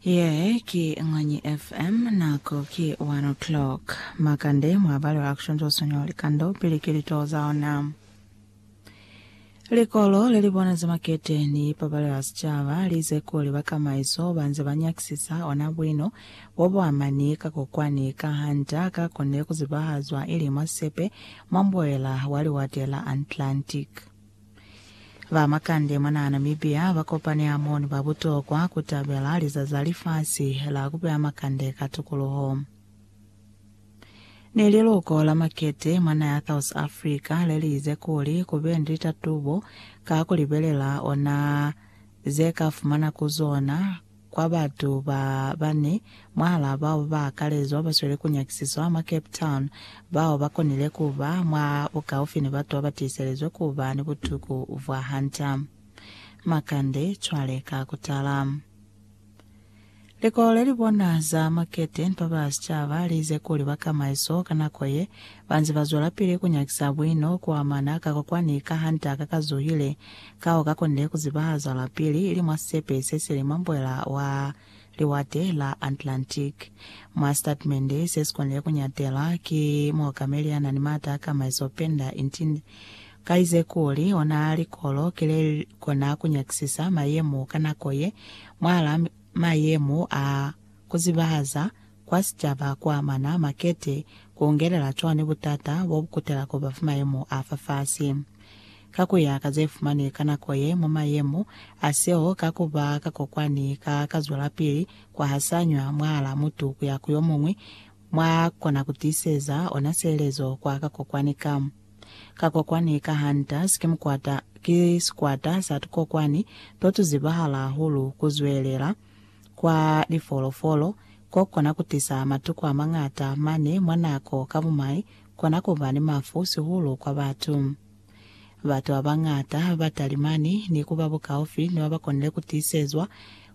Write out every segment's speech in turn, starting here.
Ye ki Ng'anyi FM, nako ki 1 o'clock. Makande mwa bali ba Action to Sonyo Likando pili ki litoho za ona. Likolo le li bona za makete ni ipabalelo ya sicaba li ize kuli bakamaiso ba nze ba nyakisisa ona buino bo bo amani ka kokwani ka ha nta ka kone ku zibahazwa ili mwa sepe mwa mboela wa Liwate la Atlantic. Ba makande mwanaa Namibia ba kopani hamo ni ba butokwa ku tabela Lizazi la Lifasi la ku Beya Makande ka Tukuluho. Ni liluko la makete mwa naha ya South Africa le li ize kuli ku be ni litatubo ka ku libelela ona ze ka fumana ku zona kwa batu ba bane mwahalaa bao ba akalezwa ba sweli ku nyakisiswa mwa Cape Town bao ba konile ku ba mwa bukaufi ni batu ba ba tiiselizwe ku ba ni butuku bwa hanta makande cwale ka ku tala. Likolo le li bona za makete ni ba ba sicaba li ize kuli bakamaiso ka nako ye ba nze ba zwelapili ku nyakisa buino ku amana ka kwa kwani ka hanta ka ka zuhile Ka u ka konile ku ziba zwalapili ili mwa sisepe se sili mwa mbwela wa Liwate la Atlantic. Mwa sitatimende se si konile ku nyatela, ki muokameli ya na ni maata a kamaiso Penda Intin ka ize kuli, ona likolo ki le kona ku nyakisisa mayemo ka nako ye, mwahala mayemo a ku zibahaza kwa sicaba ku amana makete, ku ungelela cwani butata bo bu kutela ku ba fa mayemo a fa fasi? Ka ku ya ka ze fumanwi ka nako ye mwa mayemo a seo ka ku ba ka kokwani ka ka zwelapili ku hasanywa mwahal'a mutu ku ya ku yo muñwi, mwa kona ku tiiseza ona sielezo kwa ka kokwani ka. Ka kokwani ka hunters ki mukwata, ki sikwata sa tukokwani to tu zibahala hahulu ku zwelela, kwa lifolofolo ko kona ku tisa matuku a mañata mane mwa nako ka bumai kona ku ba ni mafu sihulu kwa batu. Batu ba bañata ba talimani ni ku ba bukaufi ni ba ba konile ku tiisezwa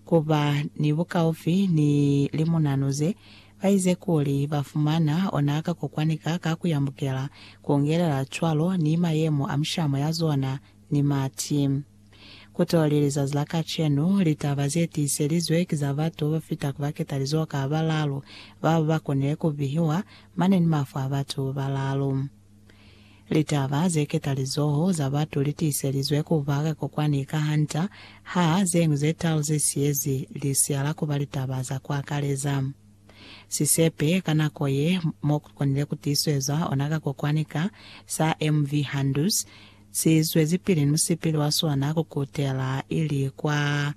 ku ba ni bukaufi ni limunanu ze ba ize kuli ba fumana ona ka kokwani ka ka ku yambukela, ku ngelela cwalo ni mayemo a mishamo ya zona ni mati. Kutoli lizazi la kacenu, litaba zetiiselizwe ki za batu babafita kubaketalizoho ka balaalu babo bakonile kubihiwa mane ni mafu a batu babalaalu. Litaba zeketalizoho za batu litiiselizwe kuba ka kokwani ka hanta ha zeñwi zetalu zesiyezi lisiya la kuba litaba za kuakaleza. Sisepe ka nako ye mo ku konile ku tiisezwa ona ka kokwani ka sa MV Handus si zwezipili ni musipili wa sona ku kutela ili kwa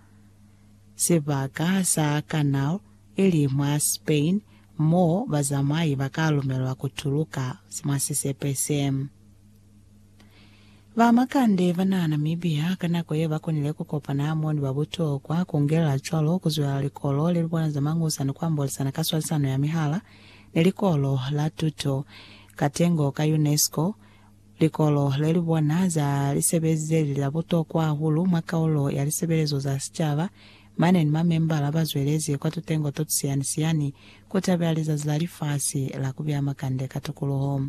sibaka sa Canal, ili mwa Spain, mo bazamai ba ka lumelwa ku tuluka mwa sisepe se. Ba makande ba na Namibia ka nako ye ba konile ku kopana hamo ni ba butokwa, ku ngelela cwalo ku zwelela Likolo le li bona za Mañusa ni ku ambolisana ka swalisano ya mihala ni Likolo la Tuto ka Tengo ka UNESCO, likolo le li bona za lisebezi ze li la butokwa hahulu mwa kaulo ya lisebelezo za sicaba Mane ni mamembala ba zwelezi kwa tutengo to tusiyani-siyani ku tabela Lizazi la Lifasi la ku Beya Makande ka Tukuluho.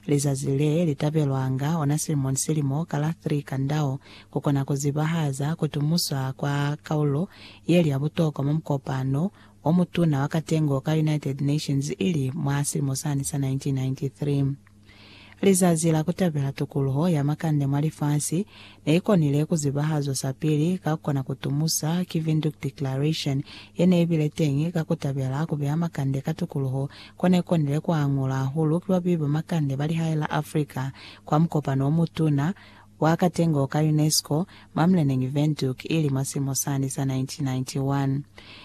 Lizazi le li tabelwanga ona silimo ni silimo ka la 3 Kandao ku kona ku zibahaza ku tumuswa kwa kaulo ye li ya butokwa mwa mukopano o mutuna wa katengo ka United Nations ili mwa silimo sani sa 1993. Lizazi la Kutabela Tukuluho ya Makande mwa Lifasi neikonile kuzibahazwa sapili ka kukona kutumusa ki Windhoek Declaration yeneibile teñi ka kutabela kubeya makande ka tukuluho konekonile kuangulwa hahulu ki babeyi ba makande ba lihae la Africa kwa mukopano omutuna wa katengo ka UNESCO mwa muleneñi Windhoek ili mwa silimo sani sa 1991.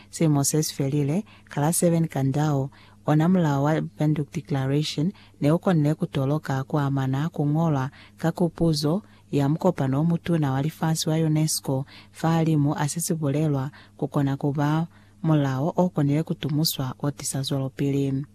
Silimo sesifelile, kala Seven Kandao Ona mulao wa Bandung Declaration ne u konile ku toloka ku amana ku ñolwa ka Kupuzo ya Mukopano o Mutuna wa Lifasi wa UNESCO fahalimu a se si bulelwa ku kona ku ba mulao o konile ku tumuswa o tisa zwelopili.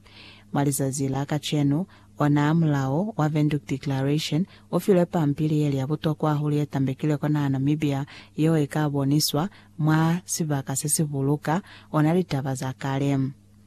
Mwa lizazi la kacenu, ona mulao wa Bandung Declaration u filwe pampili ye li ya butokwa hahulu ye tambekilwe kwa naha Namibia yeo i ka boniswa mwa sibaka se si buluka ona litaba za kale.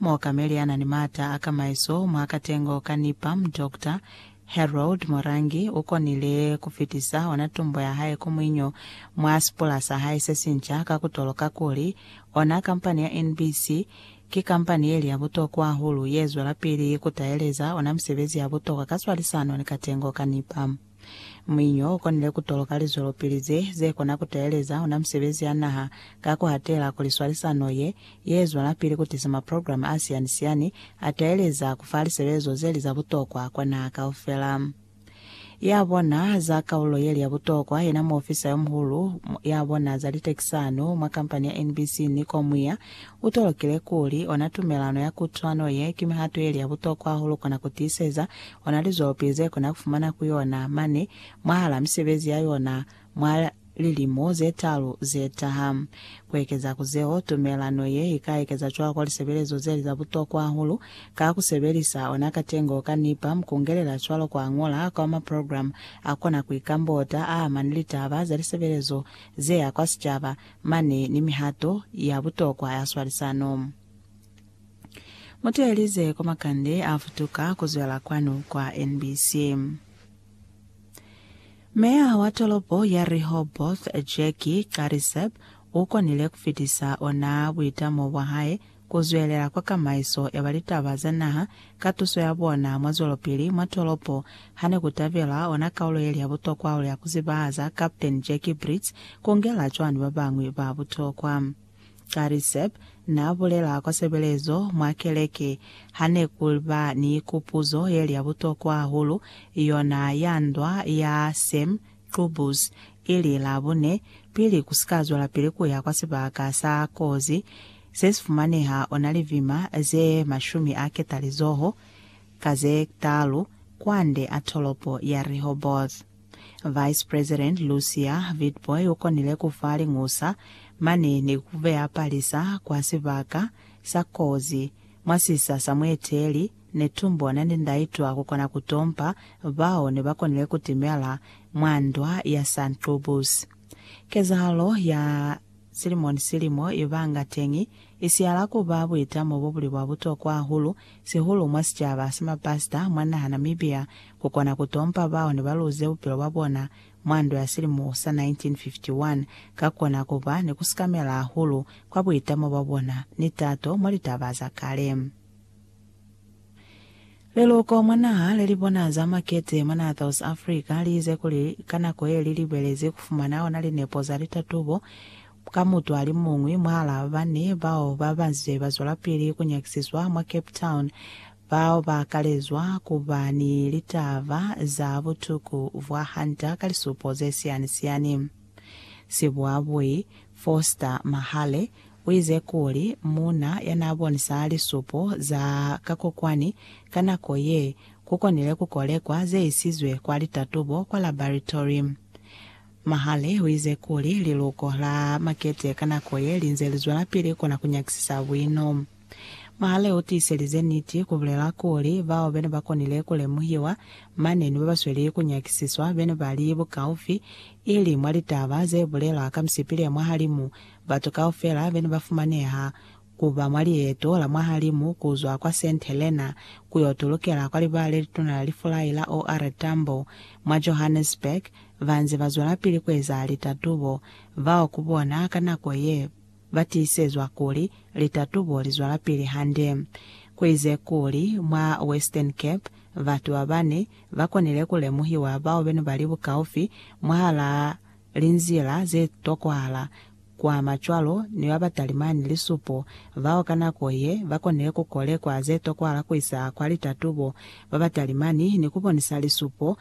Muokameli ya na ni maata a kamaiso mwa katengo ka NIPAM, Doctor Harold Morangi, u konile ku fitisa ona tumbo ya hae ku muinyo mwa sipula sa hae se sinca ka ku toloka kuli, ona kampani ya NBC ki kampani ye li ya butokwa hahulu ye zwelapili ku taeleza ona misebezi ya butokwa ka swalisano ni katengo ka NIPAM. Muinyo ukonile kutoloka lizwelopili ze zekona kuteeleza ona misebezi ya naha ka kuhatela kuli swalisano ye yezwelapili kutiisa maprograma asiani-siani ateeleza kufa lisebezo zeli za butokwa kwa naha kaufela. Yabona za kaulo yeli ya butokwa yena muofisa yomuhulu yabona za litekisano mwa kampani ya NBC Nico Muia utolokile kuli ona tumelano ya kutwano ye ki mihato yeli ya butokwa hahulu kona kutiiseza Ona lizopi ze kona ku fumana ku yona mane mwahala misebezi ya yona mwa lilimo ze talu ze taha. Ku ekeza ku zeo, tumelano ye i ka ekeza cwalo kwa lisebelezo ze li za butokwa hahulu ka ku sebelisa ona katengo ka nipa, mu kungelela cwalo kwa ñola kwa maprogramu a kona ku ikambota a amani litaba za lisebelezo ze ya kwa sicaba mane ni mihato ya butokwa ya swalisano. Mutuelize kwa makande a futuka kuzwela kwanu kwa NBC. Meya wa tolopo ya Rehoboth, Jackie Qadiseb, u konile ku fitisa ona buitamo bwa hae ku zwelela kwa kamaiso ya ba litaba za naha ka tuso ya bona mwa zwelopili mwa tolopo ha ne ku tabelwa ona kaulo ye li ya butokwa hahulu ya ku zibahaza Captain Jackie Brits ku ngela cwani ba bañwi ba butokwa. Gary Zep n'a bulela kwa sebelezo mwa keleke, Ha ne ku ba ni kupuzo ye li ya butokwa hahulu, yona ya ndwa ya Sam Qubbus, i li, Labune, pili ku si ka zwelapili ku ya kwa sibaka sa kozi se si fumaneha ona livima ze mashumi a ketalizoho ka ze talu kwande a tolopo ya Rehoboth. Vice President Lucia Witbooi u konile ku fa liñusa mane ni ku beya palisa kwa sibaka sa kozi mwa sisa sa mueteli Netumbo Nandi-Ndaitwah ku kona ku tompa bao ne ba konile ku timela mwa ndwa ya Sanqubus. Kezahalo ya Silimo ni silimo, i banga teñi i siyala ku ba buitamo bo buli bwa butokwa hahulu, sihulu mwa sicaba sa mapasita mwa naha Namibia, ku kona ku tompa bao ne ba luze bupilo bwa bona mwa ndwa ya silimo sa 1951, ka ku kona ku ba ni ku sikamela hahulu kwa buitamo bwa bona ni tato mwa litaba za kale. Leluko mwa naha le li bona za makete mwa naha South Africa li ize kuli ka nako ye li libelezi ku fumana ona linepo za litatubo ka mutu ali muñwi mwahala ba bane bao ba ba nze ba zwelapili ku nyakisiswa mwa Cape Town bao ba kalezwa ku ba ni litaba za butuku bwa Hunter ka lisupo ze siani-siani. Sibuabui Foster Mahale u ize kuli muuna ya n'a bonisa lisupo za kakokwani ka nako ye, ku konile ku kolekwa ze isizwe kwa litatubo kwa labaratory. Mahale u ize kuli liluko la makete ka nako ye li nze li zwelapili kona ku nyakisisa buino. Mahale u tiiselize niti, ku bulela kuli, bao be ne ba konile ku lemuhiwa mane ni ba ba sweli ku nyakisiswa be ne ba li bukaufi, ili mwa litaba ze bulelwa ka misipi le mwahalimu, batu kaufela be ne ba fumaneha ku ba mwa lieto la mwahalimu ku zwa kwa Saint Helena ku yo tulukela kwa liba le lituna la lifulai la OR Tambo mwa Johannesburg, ba nze ba zwelapili ku eza litatubo. Bao ku bona ka nako ye ba tiisezwa kuli litatubo li zwelapili hande. Ku ize kuli, mwa Western Cape, batu ba bane ba konile ku lemuhiwa bao be ne ba li bukaufi mwahal'a linzila ze tokwahala ku ama cwalo ni ba ba talimani lisupo bao ka nako ye ba konile ku kolekwa ze tokwahala ku isa kwa litatubo ba ba talimani ni ku bonisa lisupo